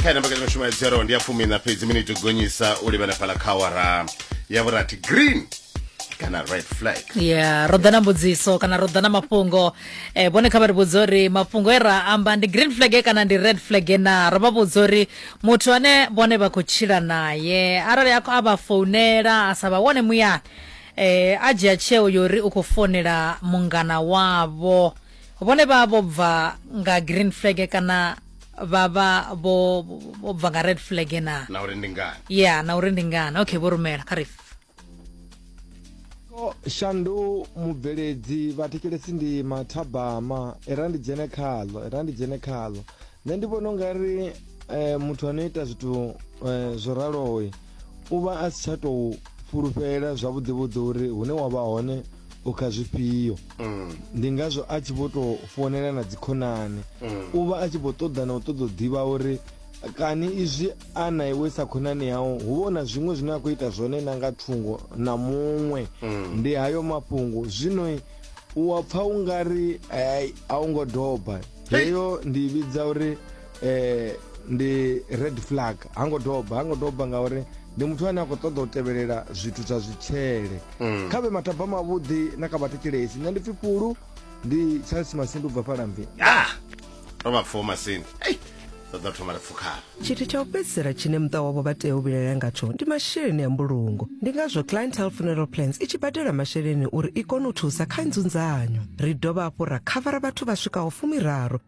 khaena mbekanya mushumo ya dzero ndi ya fumi na fhedzi miniti gonyisa u livhana fhala kha awara ya vhurathi green kana red flag ya ro ḓa na mbudziso kana ro ḓa na mafhungo eh, vhone kha vha ri vhudza uri mafhungo e ra amba ndi green flag e kana ndi red flag e na ro vha vhudza uri muthu ane vhone vha khou tshila naye arali a khou- a vha founela a sa vha wone muyani eh, a dzhia tsheo yori u khou founela mungana wavho vhone vha vho bva nga green flag kana vha vha vho vho bva nga red flag na na uri ndi ngani ya na uri ndi ngani okay vho rumela kha rifu shandu mubveledzi vhathetshelesi ndi mathabama era ndi dzhene khaḽo era ndi dzhene khaḽo nṋe ndi vhona ungari um muthu ano ita zwithu um zwo raloyi u vha a si tsha tou fulufhela zwavhuḓi vhuḓi uri hune wa vha hone u kha zwifhio Mm. ndi ngazwo a tshi vho tou founela na dzikhonani Mm. u vha a tshi vho ṱoḓa na u ṱoḓa u ḓivha uri kani izwi a na iwe sa khonani yau hu vho na zwiṅwe zwine a khou ita zwone na nga thungo na muṅwe Mm. ndi hayo mafhungo zwino u wa pfa u nga ri ai, a u ngo doba heyo ndi i vhidza uri eh, ndi red flag ha ngo doba ha ngo doba ngauri ndi muthu ane a khou ṱoḓa u tevhelela zwithu zwa zwitshele mm. kha vhe mataba mavhuḓi na kha vhathetshelesi nṋe ndi pfi fhulu ndi charles masindu bva falambi ah! ro vha pfuwo masini ṱoḓa thoma ri pfukhala tshithu tsha u fhedzisela tshine muṱa wavho vha tea u vhilalela ngatsho ndi masheleni a mbulungo ndi ngazwo clientele funeral plans i tshi badela masheleni uri i kone u thusa kha nzunzanyo ri dovha hafhu ra khavara vhathu vha swikaho fumiraru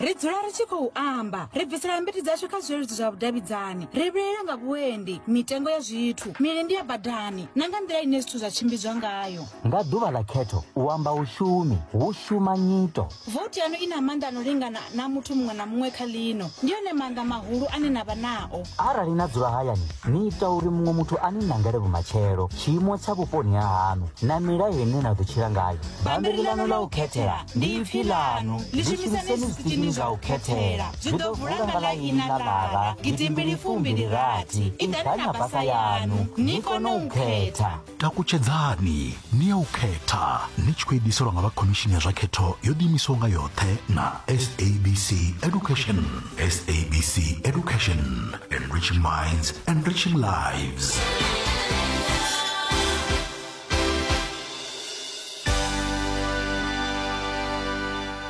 ri dzula ri tshi khou amba ri bvisela mbiti dzashu kha zwileludzi zwa vhudavhidzani ri vhilela nga vhuendi mitengo ya zwithu milindi ya badani na nga nḓila ine zwithu zwa tshimbidzwa ngayo nga ḓuvha ḽa khetho u amba u shumi hu shuma nyito vouti yanu i na maanḓa a no lingana na muthu muṅwe na muṅwe kha ḽino ndi one maanḓa mahulu ane na vha nao arali na dzula hayani ni ita uri muṅwe muthu a ni nangele vhumatshelo tshiimo tsha vhuponi ha haṋu na milayo ine na ḓo tshila ngayo bammbiri ḽaṋu ḽa u khethela ndi ipfi ḽaṋu ḽi shumiseni zwikirini zwa u khethela zwi ḓo vula nga ḽa ini ḽa ḽara gidimbili fumbili rathi iḓani na basa yaṋu ni kone u khetha takutshedzani ni ya u khetha ni tshi khou ediselwa nga vha khomishini ya zwa khetho yo ḓiimisaho nga yoṱhe na sabc education SABC Education, enriching minds, enriching lives.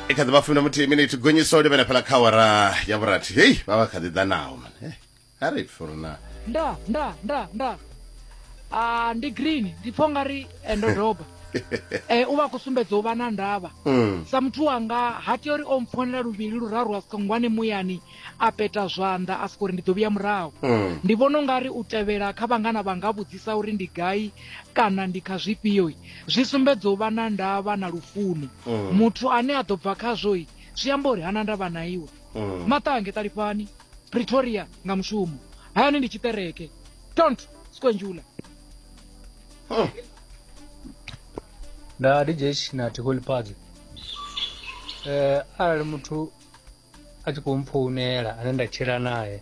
i kha ḓi vha fumi na muthihi miniti gonyiso livhena fhala kha awara ya vhurathi hei vha vha kha ḓi ḓa naho man a ri pfi uri na nda nda nda nda a ndi green ndi pfha ungari eh, ndo doba eh, u vha a khou sumbedza u vha na ndavha Mm. sa muthu wanga ha tea uri o mpfonela luvhili luraru a soko ngwane muyani a peta zwanḓa a soko uri ndi ḓo vhuya murahu Mm. ndi vhona ungari u tevhela kha vhangana vha nga vhudzisa uri ndi gai kana ndi kha zwifhioi zwi sumbedza u vha na ndavha na lufuno Mm. muthu ane a ḓo bva khazwoi zwi amba uri hana ndavha na iwe Mm. maṱange ṱalifhani pretoria nga mushumo hayani ndi tshiṱereke tont skonjula nda dj na tiholi party eh arali muthu a tshi khou mpfounela ane nda tshila naye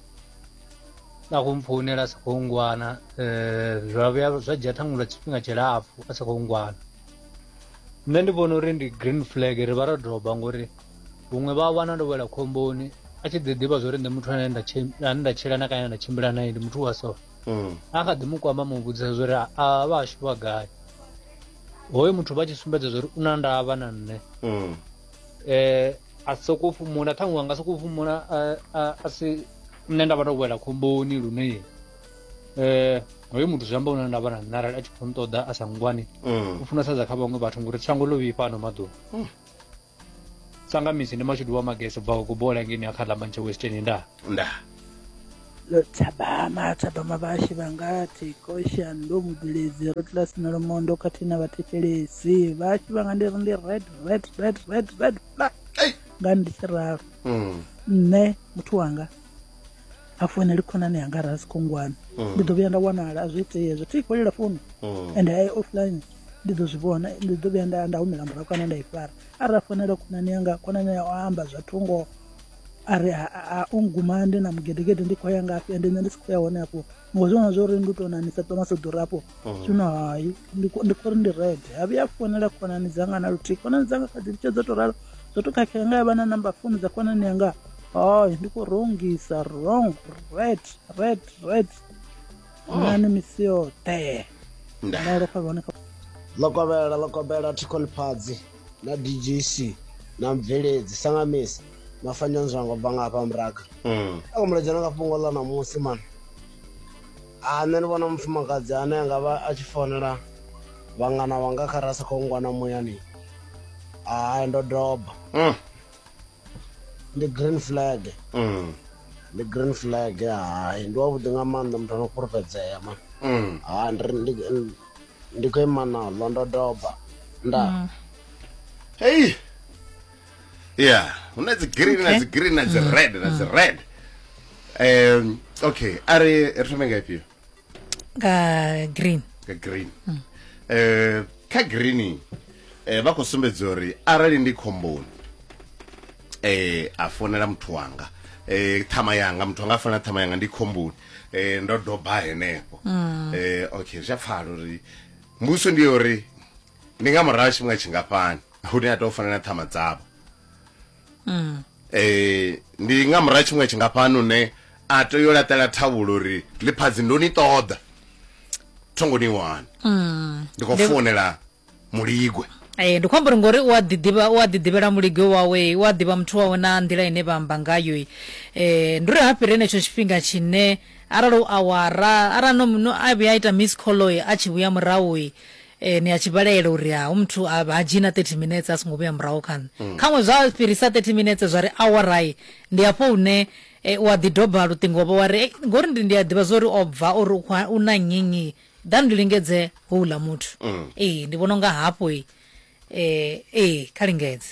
a khou mpfounela a sa khou ngwana eh zwa vhuya zwa dzhia ṱhaṅwe lwa tshifhinga tshilapfu a sa khou ngwana nṋe ndi vhona uri ndi green flag ri vha ro doba ngori huṅwe vha wana ndo wela khomboni a tshi ḓi ḓivha zwo ri nṋe muthu ane nda ane nda tshila na kana nda tshimbila naye ndi muthu wa so mm. a kha ḓi mu kwama mu vhudzisa zwo ri a vha ashu vha gai hoyo muthu vha tshi sumbedza zwo ri u na ndavha na nṋe um a sokou fhumula ṱhaṅwe anga sokou fhumula a si nṋe nda vha ndo wela khomboni lune um hoyo muthu zwi amba u na ndavha na nṋe arali a tshi khou nṱoḓa a sa ngwani mm. u funesa dza kha vhaṅwe vhathu ngori shango ḽo vhifha ano maḓuvha mm. tsangamisi ndi mashudu wa magesi bvaho ku bola ngeni ya khala manche western nda nda lotshabama tshabama vhashi vha nga tikosha ndo mubveledzi ro tla sina lomondo khathihi na vhathetshelesi vhashi vha nga ndi ri ndi red red red red red flag nga ndi tshi ralo Mm. nṋe muthu wanga a founeli khonani yanga ra si khongwana mm. ndi ḓo vhuya nda wanala a zwi itei hezwo thi fhelela founu mm. and i offline ndi ḓo zwi vhona ndi ḓo vhuya nda humela murahu kana nda i fara arali a founela khonani yanga khonani ya o amba zwa thungo a ri a unguma ndi na mugedegede ndi khou ya ngafhi ende nṋe ndi si khou ya hone afho ngo zwivhona zwo uri ndi u tou nanisa ṱoma sa ḓura afho mm. zwino hai ndi khou ri ndi rede ha vhuya founela khonani dzanga na luthihi khonani dzanga kha dzi litshe dzo tou ralo zwo tou khakhea nga ya vha na namba founu dza khonani yanga hai ndi khou rongisa wrong red red red mm. nani misi yoṱhe ndalofha vhone kha ḽo kovhela ḽo kovhela thikholifhadzi na djc na mubveledzi sangamisa mafanya nzwango bva nga hafha muraga mm. a khou muledzana nga fhungo ḽa ṋamusi mani a nṋe ni vhona mufumakadzi ane a nga vha a tshi fonela vhangana vhanga kha ra sa khou ngwana muyani a ndo doba mm. ndi green flag mm. ndi green flag hai ndi wavhuḓi nga maanḓa muthu ano fhulufhedzea ma mm. ha ndi khou ima naḽo ndo doba nda mm. hei ya hu na dzi green na dzi green na dzi red na dzi red um okay a ri ri thome nga ifhio nga green nga green mm. eh kha green eh vha khou sumbedza uri arali ndi khomboni eh a fonela muthu wanga eh thama yanga muthu anga fana thama yanga ndi khomboni eh ndo doba henefho mm. eh okay zwa pfala uri mbuso ndi uri ndi nga murashi mwa tshingafhani hune a to fana na thama dzavho um ndi nga murahu tshiṅwe tshingafhani une a tea yo laṱela thavhulo uri ḽiphadzi ndo ni ṱoḓa thongo ni wana mm. ndi khou founela muligwe ee ndi khou amba uri ngori u a ḓiḓivha u a ḓiḓivhela muligwe wawe u a ḓivha muthu wawe na nḓila ine vha amba ngayo um eh, ndi uri ha fhiri henetsho tshifhinga tshine arali u awara arali no a vhuya a ita miss colloy a tshi vhuya murahu E, ni a tshi vhalaela uri ha hu muthu ha ha dzhii na 30 minetse a songo vhuya murahu kha nṋe khaṅwe zwa fhirisa 30 minetse zwa ri awarai ndi hafho hune e, u a ḓi doba luṱingo wa vha wa ri "Ei, ngori ndi ndi a ḓivha zwa uri o bva uri u khou ha- u na nnyinnyi ḓani ndi lingedze houḽa muthu ee ndi vhona unga hafho e, ee kha lingedze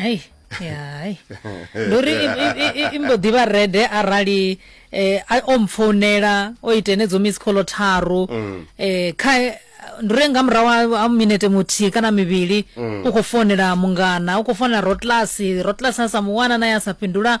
hei hai ndi uri i mbo ḓi vha rede arali eh, a- o mpfounela o ita enedzo miss call tharu um kha ndi uri nga murahu ha- ha minete muthihi kana mivhili u khou founela mungana u khou founela rotlasi rotlasi a sa mu wana naye a sa fhindula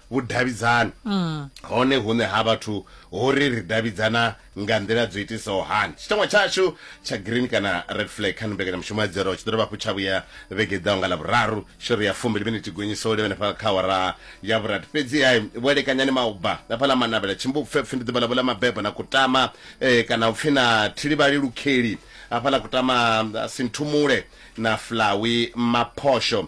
vhudavhidzani mm. hone hune ha vhathu hori ri davhidzana nga nḓila dzo itisaho hani tshitangwa tshashu tsha green kana red flag kha mbekanyamushumo ya dzero tshi ḓo dovha hafhu tsha vhuya vhege ḓaho nga lavhuraru shori ya fumbili miniti gonyiso ule vhenefha kha wara ya vhurati fhedzi ha vho lekanyani mauba hafha ḽa manavhela tshimbupfepfe ndi ḓuvha ḽavho ḽa mabebo na kutama eh, kana u pfi na thilivhali lukheli hafha ḽa kutama sinthumule na flawi maphosho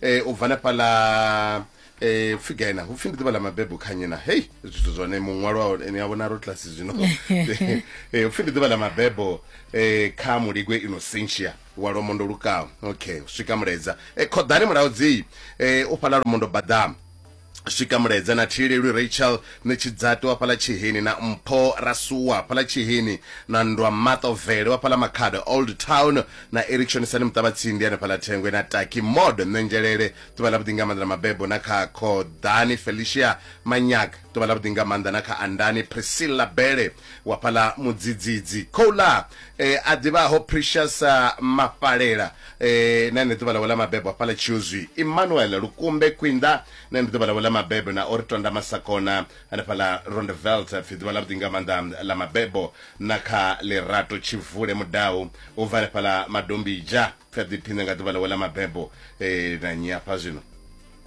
eh, u bva na fhala eh upfi gai na upfi ndi ḓuvha ḽa mabebo kha nyi na hei zwithu zwone muṅwalo ni a vhona ro class zwino eh upfi ndi ḓuvha ḽa mabebo eh kha muligwe inocentia wa lomondo lukaho okay u swika muledza eh khoḓani mulaudzi eh u fhala lomondo badama swika mulaedza na thilelwi rachel ni tshidzati wa fhala tshihini na mpho rasuwa fhala tshihini na ndwa matovele wa fhala makhado old town na erickson sani muṱavhatsindi ane fhala thengwe na taki mod ṋengelele ḓuvha ḽa vhuḓi nga maanḓa na mabebo na kha khoḓani felicia manyak ḓuvha ḽa vhuḓi nga maanḓa na kha andani priscilla bele wa fhala mudzidzidzi khouḽa eh, a ḓivhaho precious ah, mafhalela Ee, na ndi ḓuvha ḽawe ḽa mabebo hafhaḽa Tshiozwi. Emmanuel Lukumbe Kwinda, na ndi ḓuvha ḽawe ḽa mabebo na ori Tonda Masakona hanefhaḽa Rondeveld pfi ḓuvha ḽavhuḓi nga maanḓa ḽa mabebo na kha Lerato Tshivule Mudau u bva hanefhaḽa Madombija pfi a ḓiphine nga ḓuvha ḽawe ḽa mabebo. Ee, na nnyi hafha zwino?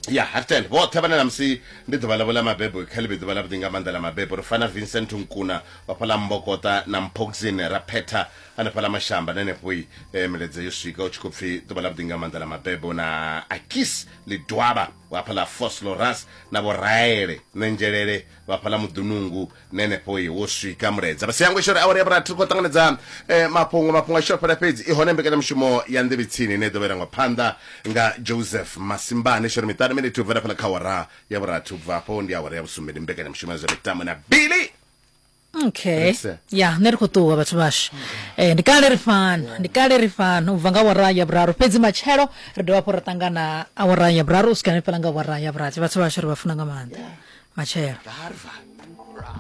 ya hartel vhoṱhe vhane na musi ndi ḓuvha ḽavho ḽa mabebo kha ḽivhe ḓuvha ḽavhuḓi nga maanḓa ḽa mabebo ri fana vincent nkuna vhafha ḽa mbokota na mphoxin ra phetha hanefha ḽa mashamba na henefhoi e, miledza yo swika u tshi khou pfi ḓuvha ḽavhuḓi nga maanḓa ḽa mabebo na akis lidwaba vhafha ḽa fosloras na vhoraele nendzhelele vhafha ḽa muḓunungu nenefho i wo swika muledza fhasi yango ishore awari ya vhurathi ri khou ṱanganedza eh, mafhungo mafhungo a tshi fhela fhedzi i hone mbekanyamushumo ya nḓevhe tsini ine i ḓo vherangwa phanḓa nga joseph masimbane ishore miṱanu miniti u bvela fhela kha awara ya vhurathi u bva afho ndi awara ya vhusumbe ndi mbekanyamushumo ya zwa mitambo na billy okay Rese. ya nṋe ri khou ṱuwa vhathu vhashu eh, ndi kale ri fana ndi kale ri fana u bva nga awara ya vhuraru fhedzi matshelo ri dovha hafhu ra ṱangana awara ya vhuraru u swika hanefhala nga awara ya vhurathi vhathu vhashu ri vha funa nga maanḓa matshelo Harvard.